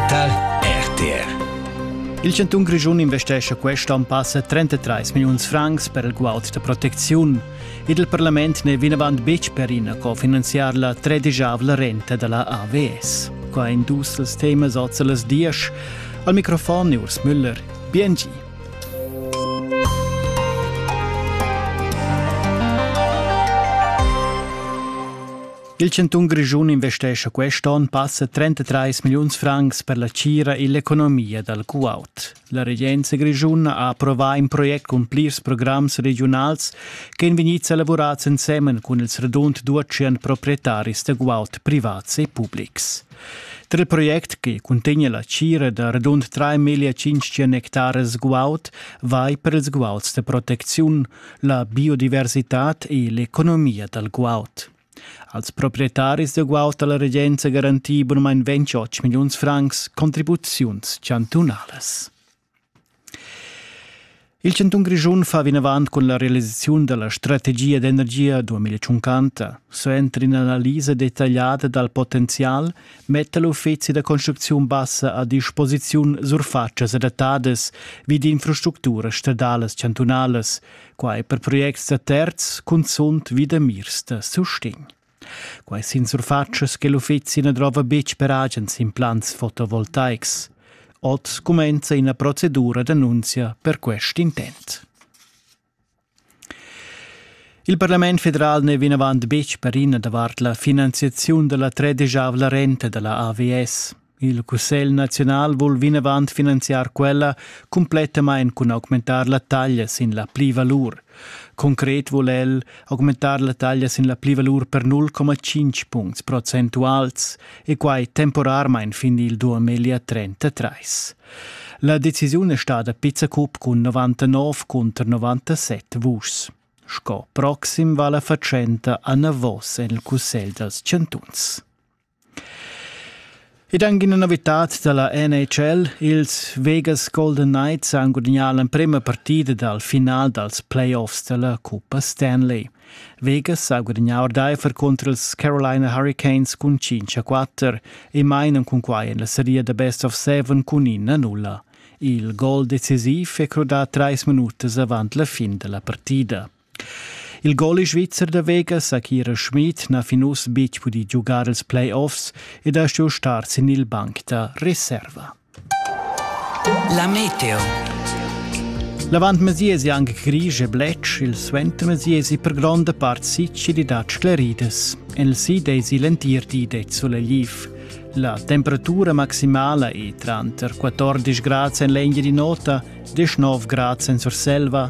tar RTR. Il chantun Grischun investescha questa en passa 33 milliuns francs per il guaud da protecziun ed il parlament n'è vinavant betg per ina cofinanziar la tredisavla renta da la AVS. Qua in dus els temas oz a las dies. Al microfon Urs Müller, BNG. Il chantun Grischun investescha quest onn passa 33 milliuns francs per la tgira e l'economia dal Kuwait. La regenza grischuna ha approvà in project cun plirs programs regiunals ch'èn vegnids elavurads ensemen cun ils radund 200 proprietaris da guaud privats e publics. Tra il project che cuntegna la tgira da radund 3.500 hectares guaud vai per ils guauds da protecziun, la biodiversitad e l'economia dal guaud. Als proprietaris da guaud ha la regenza garantì bunamain 28 milliuns francs contribuziuns chantunalas. Il chantun Grischun fa vinavant cun la realisaziun da la strategia d'energia 2050. Suenter in'analisa detagliada dal potenzial metta l'uffizi da construcziun bassa a disposiziun surfatschas adattadas vi d'infrastructuras stadalas chantunalas, Quai per projects da terz cunzunt vi da mirs da sustegn. Quai sin surfatschas che l'uffizi na drova betg per agens implants fotovoltaics. Oz cumenza ina procedura d'annunzia per quest intent. Il Parlament federal n'è vinavant betg per ina davart la finanziaziun da la tredegiavla renta da la AVS. Il Cussegl naziunal vul vinavant finanziar quella cumplettamain cun augmentar la taglia sin la plivalur. Concret vul el augmentar la taglia sin la plivalur per 0,5 puncts procentuals e quai temporarmain fin il 2033. La decisiun è stada pizzacup cun 99 cunter 97 vuschs. Sco proxim va la fatschenta anavos en il Cussegl dals chantuns. Ed anche una novità dalla NHL, ils Vegas Golden Knights han guadagnato l'emprima partita dal finale dals playoffs della Coppa Stanley. Vegas ha guadagnato Diver contro ils Carolina Hurricanes cun 5-4 e mainan con quai in la serie da best of seven cun 1-0. Il gol decisiv è croda trais minutas avant la fin della partita. Il goli svizzer da Vegas ha Kira Schmid na fin uss betg pudì giugar els playoffs ed ha stuì star sin il banc da reserva. La meteo. L'avantmesiesi anche grisch e bletsch, il suentermesiesi per gronda part sicilidat scleridas. El si desi l'entir di det solegliv. La temperatura maximala è tranter 14 gradi en legna di nota e 9 gradi en Surselva